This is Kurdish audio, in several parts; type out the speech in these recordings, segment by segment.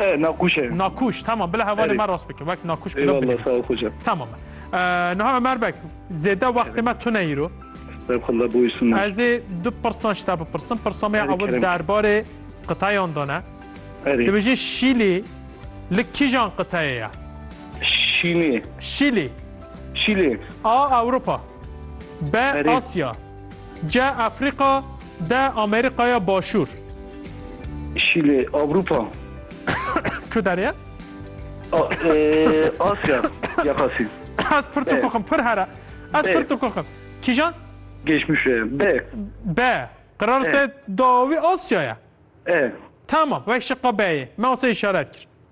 E, nakuş e. Nakuş tamam bila hevalê Erê. me rast bike wek nakuş bila Eyvallah sağ ol binivîs. hoca. Tamam e. Ee, Niha Ömer Bek, zêde wextê me tune îro. Estağfurullah buyursunlar. Ez ê du pirsan ji te bipirsim. Pirsa me ya Erê, ewil kerem. derbarê qitayan dane. Erê. Dibêje Şîlî li kîjan qiteyê ye? Şini. Şîlî Şili. A. Ewropa B. Erê. Asya C. Afrika De Amerîkaya Başûr. Şîlê, Avrupa. Çu derê? Asya, Yaqasî. Ez pir tukuxim, pir here. Ez pir tukuxim. Kîjan? Geçmişe, B. B. Qirarte dawî Asyaya. E. Tamam, weş şiqa B'yê. Me asê işaret kir.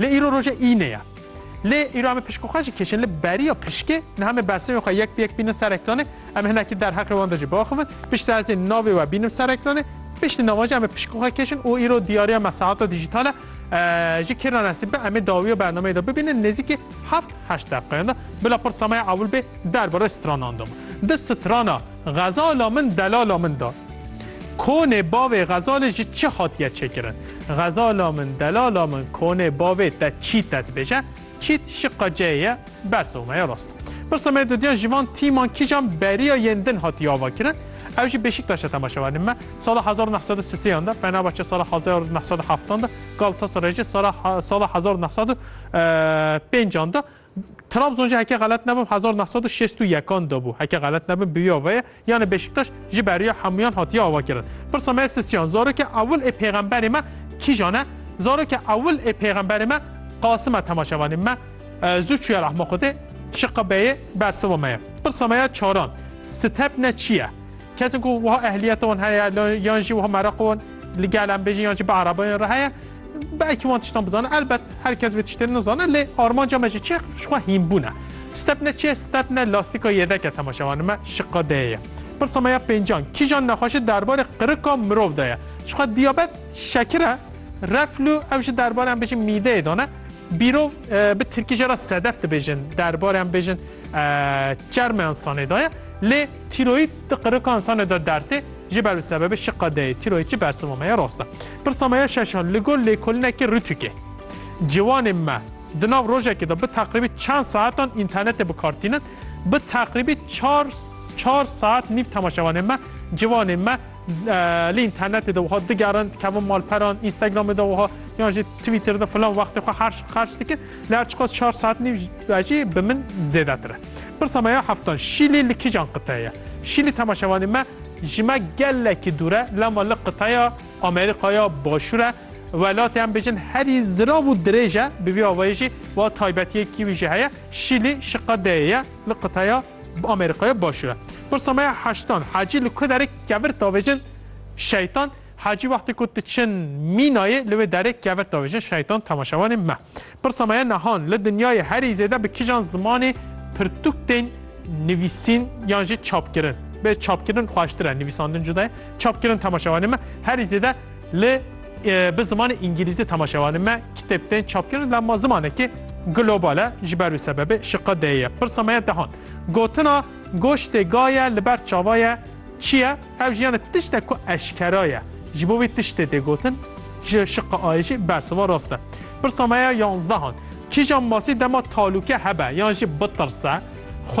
Lê îro roja îne ye. Lê îro em ê pişkê xwe jî kêşin li beriya pişkê niha me bersivên xwe yek bi yek bînin ser ekranê, em ê hinekî derheqê wan de jî biaxivin, piştî ez ê navê we bînim ser ekranê, piştî navan jî em ê pişkê xwe kêşin û îro diyariya me saeta dîjîtal e. Ji kê re nesîb be em ê dawiya bernameyê de bibînin nêzîkî heft heşt deqeyan de bila pirsa me ya ewil bê derbarê stranan de bû. Di strana Xezala min delala min da. Konê bavê xezalê ji çi hatiye çêkirin? Xezala min delala min konê bavê te çîte dibêje. Çît şiqa ceyê ye, bes o me ye rast. Pirsa me dodiya ji van tîman kîjan beriya yên din hatiye avakirin? Ew jî Beşiktaşa temaşe werin me. Sala hezar û neh sed û sisêyan de, Fenerbahçe sala hezar û neh sed û heftan de, Galatasaray jî sala sala hezar û neh sed û pêncan de Trabzon jî heke xelet nebim hezar neh sed û şêst û yekan de bû. Heke xelet nebim bi vî avayê yanê Beşiktaş ji beriya hemûyan hatiye avakirin. Pirsa me sisyan zarokê ewil ê pêxemberê me kîjan e? Zarokê ewil ê pêxemberê me Qasim e temaşevanê me zû çûye rehma Xwedê şiqabeyê bersiva me ye. Pirsa me ya çaran, step ne çi ye? Kesên ku wiha ehliyeta wan heye yan jî wiha mereqa wan li gel em bêjin yan jî bi erebayan re heye belkî wan tiştan bizane elbet her kes vê tiştên nizane lê armanca me ji çi ji xwe hînbûne stepne çê stepne lastîka yêdeke temaşevanê me şiqa dê ye pirsa me ya pêncan kîjan nexweşi derbarê qirika mirov de ye ji xwe diyabet şekir e reflû ew ji derbarê em bêjin mîdeyê dane bîrov bi tirkî jê re sedef dibêjin derbarê em bêjin çermeyan sanê daye lê Tîroyîd di qirika însanê de derd tê, ji ber bi sebebê şiqa deyê tîroyîdçi bersiva me ye rast e. Pirsa me ya şeş a li gor lêkolinekî Rûtûkê. Ciwanên me di nav rojekê de bi teqrîbî çend saetan înternetê bi kar tînin? Bi teqrîbî çar çar saet nîv temaşevanên me, ciwanên me, Li înternetê de wiha digerin, dikevin malperan, Instagramê de wiha yan jî Twitterê de filan wextê xwe herş xerç dikin. Lê her çiqas çar saet nîv jî bi min zêdetir e. Pirsa me ya heftan Şîlî li kîjan qiteyê ye? Şîlî temaşevanê me ji me gelekî dûr e, lema li qiteya Amerîkaya Başûr e. Welatê em bêjin herî zirav û dirêj e, bi vî awayî jî wa taybetiyekî wî jî heye. Şîlî şiqe deyê ye li qiteya Bi Amerîkaya başûr e. Pirsa me ya heştan, hecî li ku derê kevir tavêjin şeytan, hecî wextê ku tu çin mînayê li wê derê kevir tavêjin şeytan temaşevanê me. Pirsa me ya nehan, li dinyayê herî zêde bi kijan zimanê pirtûk tên nivîsîn yan jî çapkirin? Bê çapkirin xweştir e, nivîsandin cuda ye. Çapkirin temaşevanê me herî zêde Lê bi zimanê îngîlîzî temaşevanên me kitêb tên çapkirin la ma zimanekî global e ji ber wî sebebê şiqe deyê ye. Pirsa me ye dehan. Gotina goştê ga ye li ber çava ye çi ye? Ev jî yanê tiştek ku eşkera ye. Ji bo vî tiştê tê gotin ji şiqa ayê jî bersiva rast e. Pirsa me ye yanzdehan. Kîjan masî dema talûke hebe yan jî bitirse xwe